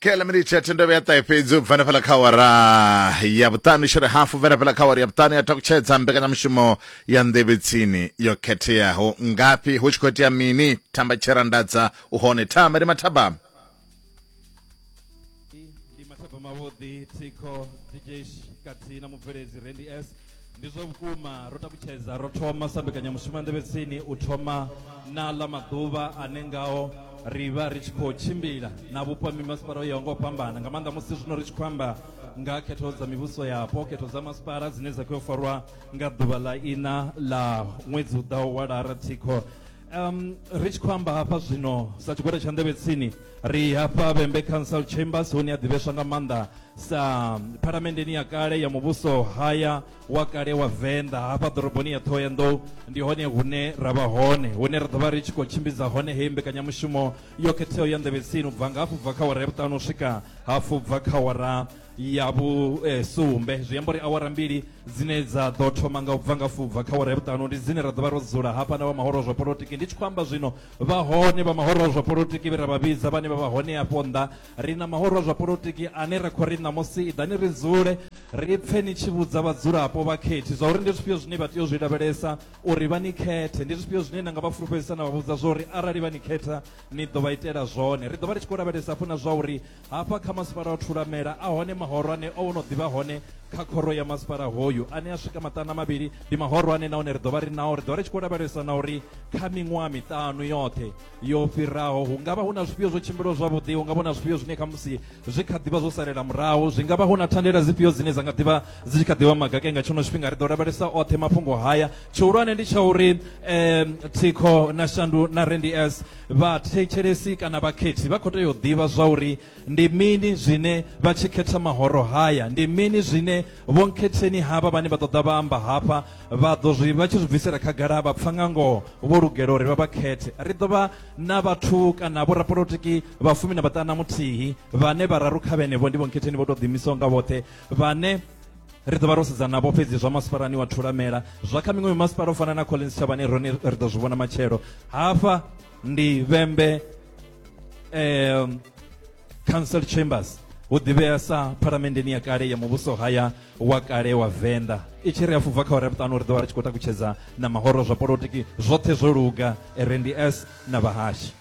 kela miniti ya thendo vhuya ṱahe fhedzi u bva na fhala kha awara ya vhuṱanu shere hafu vha na fhala kha awara ya vhuṱanu ya takutshedza mbekanyamushumo ya nḓevhetsini yo khetheaho ngafhi hu tshi khou itea mini thamba tsherandadza u hone thamba ndi mathabama ndi mathabama vhuḓi thikho dj kathihi na mubveledzi rendi s ndi zwa vhukuma ro takutshedza ro thoma sa mbekanyamushumo ya nḓevhetsini u thoma na ḽa maḓuvha ane ngao ri vha ri tshi khou tshimbila na vhupo ha mimasipala o yaho nga u fhambana nga maanḓa musi zwino ri tshi khou amba nga khetho dza mivhuso yapo khetho dza masipala dzine dza khou farwa nga ḓuvha ḽa ina ḽa ṅwedzi u ḓaho wa lara thikho um ri tshi khou amba hafha zwino sa tshigwada tsha nḓevhetsini Ri hafha Vhembe Council Chambers hune a ḓivheswa nga maanḓa sa phalamenndeni ya kale ya muvhuso haya wa kale wa Venḓa hafha ḓoroboni ya Ṱhohoyanḓou ndi hone hune ra vha hone hune ra ḓo vha ri tshi khou tshimbidza hone heyi mbekanyamushumo yo khetheaho ya nḓevhetsini u bva nga hafhu bva kha wara ya vhuṱanu u swika hafhu bva kha wara ya vhusumbe eh, zwi amba uri awara mbili dzine dza ḓo thoma nga u bva nga fubva kha wara ya vhuṱanu ndi dzine ra ḓo vha ro dzula hafha na vha mahoro zwa polotiki ndi tshi khou amba zwino Vha hone vha mahoro a zwa polotiki vhe ra vha vhidza vhane vha vha hone afho nnḓa. Ri na mahoro a zwa polotiki ane ra khou ri ṋamusi iḓani ri dzule ri pfe ni tshi vhudza vhadzulapo, vhakhethi, zwa uri ndi zwifhio zwine vha tea u zwi lavhelesa uri vha ni khethe. Ndi zwifhio zwine na nga vha fulufhedzisa na vha vhudza zwa uri arali vha ni khetha ni ḓo vha itela zwone. Ri ḓo vha ri tshi khou lavhelesa hafhu na zwa uri Hafha kha masipala wa Thulamela a hone mahorwane o no ḓi vha hone kha khoro ya masipala hoyu ane a swika maṱana mavhili. Ndi mahorwane nahone ri ḓo vha ri nao, ri ḓo vha ri tshi khou lavhelesa na uri kha miṅwaha miṱanu yoṱhe yo fhiraho hu nga vha hu na zwifhio zwo tshimbilaho zwavhuḓi, hu nga vha hu na zwifhio zwine khamusi zwi kha ḓi vha zwo salela murahu, zwi nga vha hu na thandela dzifhio dzine dza nga ḓi vha dzi tshi kha ḓi vha magake nga tshenetsho tshifhinga. Ri ḓo lavhelesa oṱhe mafhungo haya, tshihulwane ndi tsha uri thikho na shandu na Randy S. Vhathetshelesi kana vhakhethi vha khou tea u ḓivha zwauri ndi mini zwine vha tshi khetha mahoro haya, ndi mini zwine vhonkhetheni havha vhane vha ṱoḓa vha amba hafha vha ḓo zwi vha tshi zwi bvisela khagala vha pfa nga ngoho vho lugela uri vha vha khethe. Ri ḓo vha na vhathu kana vhorapolotiki vha fumi na vhaṱana muthihi vhane vhararu kha vhenevho ndi vhonkhetheni vho tou ḓiimisaho nga vhoṱhe vhane ri ḓo vha ro sedzana navho fhedzi zwa masipalani wa thulamela zwa kha miṅwe mimasipala u fana na collins tshavhani rone ri ḓo zwi vhona matshelo hafha ndi vhembe um council chambers hu ḓivhea sa phalamenndeni ya kale ya muvhuso haya wa kale wa venḓa i tshi ri a fubva kha ore vhuṱanu ri ḓo vha ri tshi khou takutshedza na mahoro zwa polotiki zwoṱhe zwo luga rnds na vhahashi